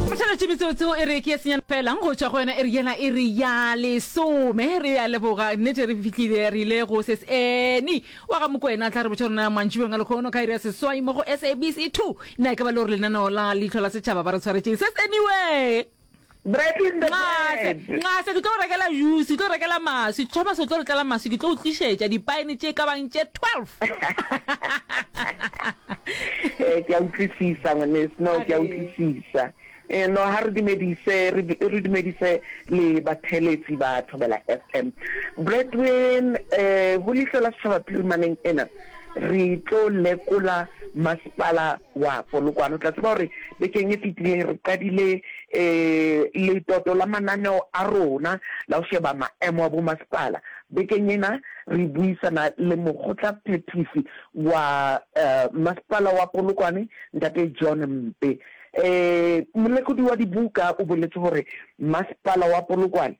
Phatlalatši metseotseo e re ke ya senyana fela go tšwa go yona e re yela e re ya lesome re ya leboga nnete re fitlhile re ile go ses ene wa ga mokwena tla re botša rona mantšibeng a lekgono ka iri ya seswai mo go sabc two na e ka ba le gore lenaneo la leitlho la setšhaba ba re tshwaretšeng ses eniwe Bread in the Nxase, bread. nxase, ke tlo go rekela juice, ke tlo go rekela maswi. Thomas o tlo re tlela maswi, ke tlo go tlišetša dipaene tše e ka bang tše 12. Eh, ke a utlwisisa ngwaneso, no, ke a Are. utlwisisa. Eh, no, ha re dumedise, re, du- re dumedise le batheeletsi ba Thobela FM. Brethren, eh, ho leihlo la setšhaba phirimaneng ena, re tlo lekola masepala wa Polokwane. O tla tseba gore bekeng e fetileng re qadile letoto la mananeo a rona la go sheba maemo a bomasepala. Bekeng ena re buisana le mokgotla-phethisi wa Masepala wa Polokwane, Ntate John Mpe. Molekodi wa dibuka o boletse gore Masepala wa Polokwane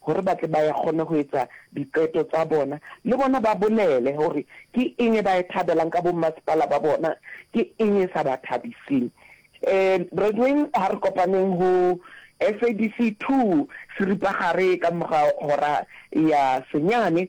gore ba tle ba e kgone go etsa diqeto tsa bona, le bona ba bolele gore ke eng e ba e thabelang ka bommasepala ba bona, ke eng e sa ba thabiseng. Um Brethren, ha re kopaneng ho SABC 2 seripagare ka mor'a hora ya senyane,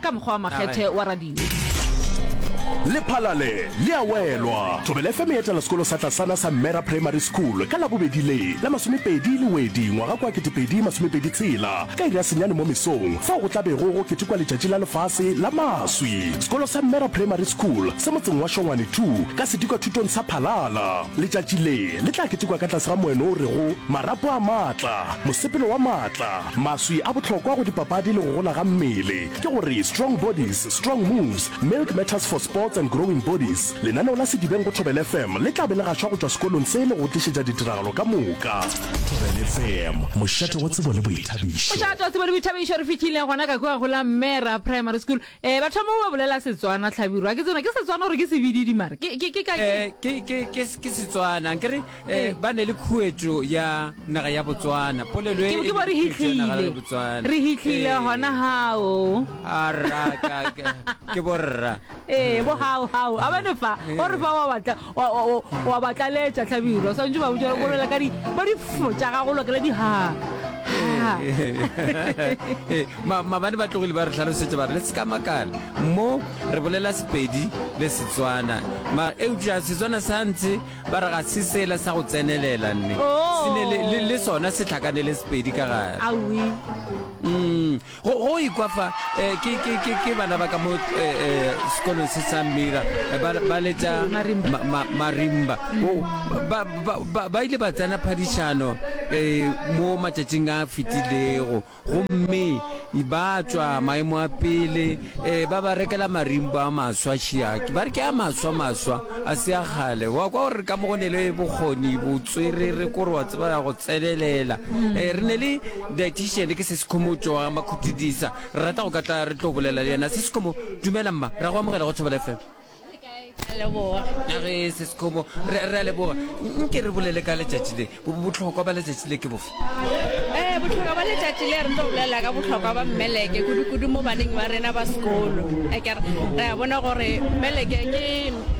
Ka mokgwa wa makgethe wa radio. Lephalale le a welwa. Thobela FM e etela sekolo sa tlasana sa Mmera Primary School ka Labobedi le la masomepedi le wedi ngwaga kwa ketepedi masomepedi tshela ka iri ya senyane mo mesong fao go tla bego go ketekwa letšatši la lefase la maswi. Sekolo sa Mmera Primary School se motseng wa Shongwane two ka sedikwa thutong sa Phalala. Letšatši le le tla ketekwa ka tlase ga moeno o rego, Marapo a Maatla, Mosepelo wa Maatla. Maswi a bohlokwa go dipapadi le go gola ga mmele ke gore Strong Bodies, Strong Moves, Milk Matters for Sports and Growing Bodies. Lenaneo la Sedibeng go Thobela FM le tla be le gašwa go tšwa sekolong se le go go tlišetša ditiragalo ka moka. Thobela FM, mošate wa tsebo le boithabišo. Mošate wa tsebo le boithabišo, re fihlile gona ka kua go la Mmera Primary School. Eh, ba thoma ba bolela Setswana, Hlabirwa. Ke tsena, ke Setswana gore ke sebididi mara? Ke, ke, ke ka ke? Eh, ke, ke, ke, ke Setswana, ankere? Eh, ba ne le khuetšo ya naga ya botswana polelo e ke bo re hitlile re hitlile eh. gona gao ke borra ee eh, bo gao gao a bane fa o re fa wa batlaletša tlhabiro swantse ba botsa go lela ka di bo di fotša ga go lokela di ha mabane ba tlogile ba re tlhalosetsa ba re le se ka makala mo re bolela sepedi le setswana ma eupša setswana sa ntse Ba re ga se sela sa go tsenelela nne. Oh. Se ne le, le, le sona se tlhakanele sepedi ka gare. Awi. Mm. Go, go ikwa fa eh, ke, ke, ke, ke bana ba ka mo eh, eh, sekolong se sa Mira eh, ba, ba letša Marimba. ma, ma, marimba o ba, ba, ba, ba ile ba tsena phadišano eh, mo matšatšing a fetilego Gomme ba tšwa maemo a pele, e, ba ba rekela marimbo a maswa, šiaki, ba re ke a maswa, maswa, a se a kgale. Wa kwa gore ka mo go ne le bokgoni, botswerere, kore wa tseba ya go tsenelela. E, re ne le dietitian, ke se sekhomo tšo wa makhutidisa, re rata go ka tla re tlo bolela le yena. Se sekhomo, dumela mma, ra go amogela go Thobela FM. ge se sekgomo re a leboga nke re bolele ka letšatši le botlhokwa ba letšatši le ke bofe ee eh, botlhokwa ba letšatši le re tlo bolela ka botlhokwa ba mmeleke kudu-kudu mo baneng ba rena ba sekolo ekere re a bona gore mmeleke ke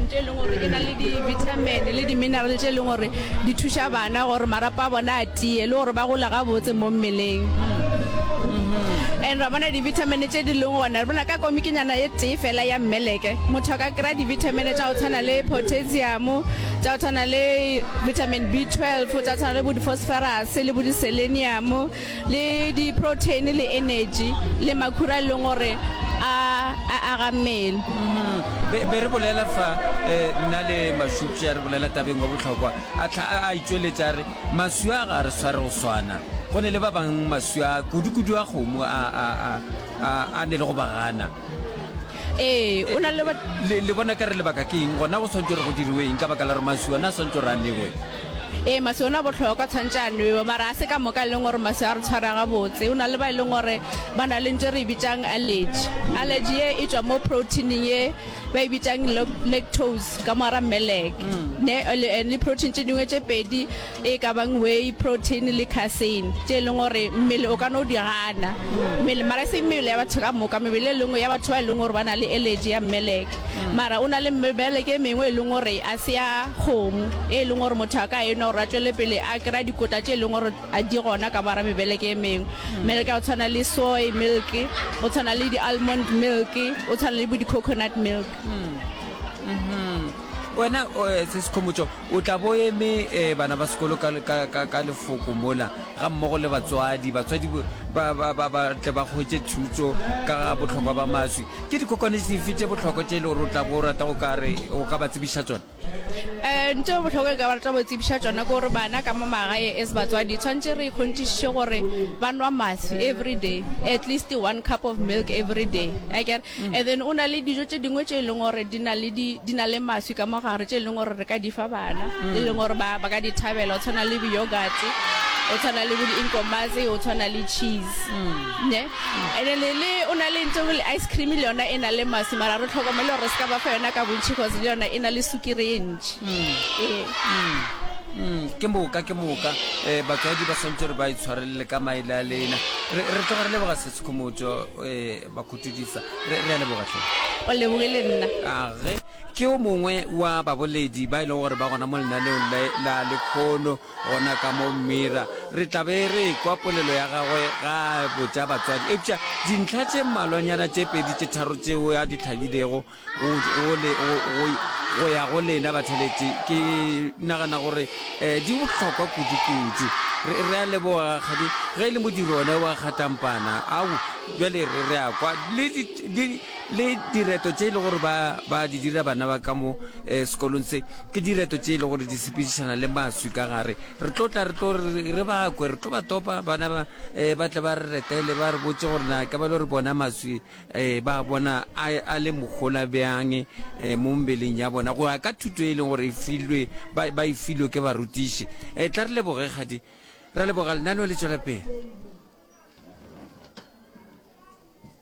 ntho e leng gore e na le di-vitamin le di-mineral tse e leng gore di thuša bana gore marapa a bona a tee le gore ba gola gabotse mo mmeleng and ra bona divitamine tše di leng gona re bona ka komikinyana ye tee fela ya mmeleke motho a ka kry-a divitamine tša go tshwana le potassium tša go tshwana le vitamin b 12 tša go tshwana le bo di-phosphorus le bo di-selenium le di-protein le energy le makhura e leng gore a aga mmele mm-hmm. be re bolela fa um nna le mashupša re bolela tabeng wa botlhokwa a tlha a itšweletša re Maswi a ga a re sware go swana. Go ne le ba bang maswi a kudukudu a kgomo a, a, a, a, a ne le go ba gana. Ee, o na le ba. Le, le bona ka re lebaka ke eng? Gona go swantšwe re go diriwe eng ka baka la gore maswi ona a swantšwe re a newe? Ee, maswi ona a bohlokwa, tshwantše a nwewe. Mara a se ka moka e leng gore maswi a re tshwara gabotse. O na le ba e leng gore ba na le ntho e re e bitšang allergy. Allergy ye e tšwa mo protein-ing ye. ba e bitšang lactose ka moara melek mm. eh, le protein tše dingwe tše pedi e ka bang way protein le casein tše e leng gore mmele o ka no di gana mm. mmele mara e se mmele ya batho ka moka mebele e lengwe ya batho ba e leng gore ba na le allergy ya melek mm. mara o na le melek e mengwe e leng gore a se ya kgomo e leng gore motho a ka enwa gore a tswele pele a kry-a dikota tše e leng gore A di gona ka bara mebeleke e mengwe? Meleke ya go tshwana le soy milk, go tshwana le di-almond milk, go tshwana le bo di-coconut milk. Wena eh, se Sekhomotšo, o tla bo eme eh, bana ba sekolo ka, ka, ka, ka lefoko mola, ga mmogo le batswadi, batswadi bo- ba, ba, ba, ba tle ba hwetše thuto ka ga bohlokwa ba maswi. Ke dikokwane dife tše bohlokwa tše e le gore o tla bo o rata go ka re o ka ba tsebiša tšona? um ntho e botlhoko e ka ba rata go tsebiša tsona ke gore bana ka mo magae as batswadi tshwanetse re ikgonthišiše gore ba nwa matswi every day at least one cup of milk every day akere mm. and then o na le dijo tse dingwe tse e leng gore di na le matswi ka mogare tse e leng gore re ka di fa bana mm. e leng gore ba ka di thabela o tshwana le beyogate o tshwana le bo di-inkomaze o tshwana le cheese mm. ne Ene Lele o na le ntho le ice cream le yona e na le masi mara re tlhokomele gore se ka ba fa yona ka bontšhi cause le yona e na le sukiri e ntši ee Mm, ke moka ke moka um batswadi ba swantse gore ba e tshwarelele ka maele a lena re re tloga re leboga sesekgomotso um eh, ba khutudisa re re a leboga tlhe o leboge le nna age ke o mongwe wa baboledi ba e leng gore ba gona mo lenaneong la- la lekgono Gona ka mo Mira re tla be re ekwa polelo ya gagwe ga a botša batswadi. Eupša dintlha tše mmalwanyana tše pedi tše tharo tšeo a di hlagilego go, go, le, go, go, go ya go lena batheletši, ke nagana gore eh, di bohlokwa kudukudu. Re, re a leboga, rakgadi, ge e le modiro one wa kgatampana. Au, bjale re, re a kwa. Le, di, le, le direto tše e le gore ba, ba di dira bana ba ka mo eh, sekolong se. Ke direto tše e le gore di sepedišana le maswi ka gare. Re tlo tla re tlo re, re ba kwe, re tlo ba topa, bana ba, eh, ba tle ba re retele, ba re botše gore na ke ba lo re bona maswi eh, ba a bona a, a le mohola bjang eh, mo mebeleng ya bona, go ya ka thuto e leng gore e filwe, ba, ba e filwe ke barutiši. Eh, tla re leboge, kgadi. Ra leboga, lenaneo le tšwela pele.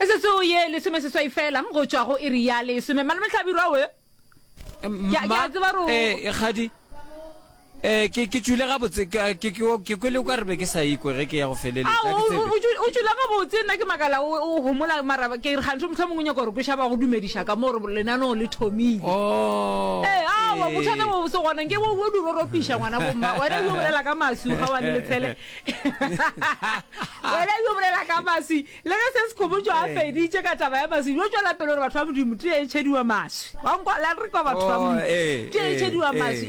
Metsotso ye lesomeseswai fela go tšwa go iri ya lesome. Malome Hlabirwa we? Ke a- ke a tseba gore o- eh kgadi eh ke ke tšwile gabotse ke ke- ke- ke kwele o ka re be ke sa ikwe ge ke ya go feleletsa Ao, ha ke o- tsebe. o- o tšwi- o tšwila gabotse nna ke makala o o homola mara ke re gantho mohlomong o nyaka gore ko šaba go dumediša ka moo gore lenaneo le thomile Oh, ee awa eh. bothata bo se gona nke bo bo di roropiša ngwana bomma wena o bolela ka masu ga wa le lefele wena yo bolela ka maswi le ge se sekgomotšo a feditše ka taba ya maswi yo tšwela pele gore batho ba modimo tee e tšhediwa maswi wa nkwala re kwa batho ba modimo tee e tšhediwa maswi